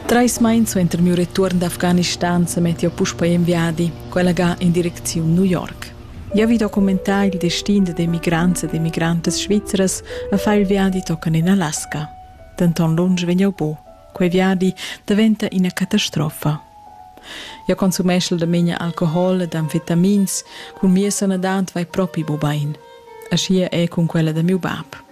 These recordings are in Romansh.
Trais mais suenter miu retuorn d'Afghanistan semetti jeu puspei en viadi, quella ga in direcziun New York. Jeu vi documentar il destin dad emigrants ed emigrantas svizras e far il viadi tochen en Alaska. Denton lunsch vegn jeu buc. Quei viadi daventa ina catastrofa. Jeu consumeschel da memia alcohol ed amfetamins, cun mia sanadad vai propi bubein. Aschia è cun quella da miu bab.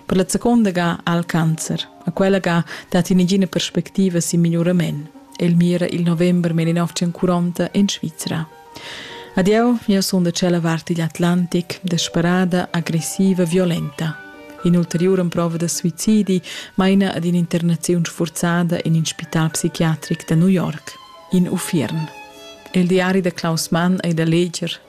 Per la seconda ga ha el cancer. A quella ga dat negina perspectiva sin migliorament. El mira il november 1940 en Svizra. Adieu, io sono da cella varti di Atlantic, desperada, aggressiva, violenta. In'ulteriura prova da suicidi maina ad un'internazione sforzata in un spital psichiatric da New York, in Uffiern. Il diari da Klaus Mann è da leggere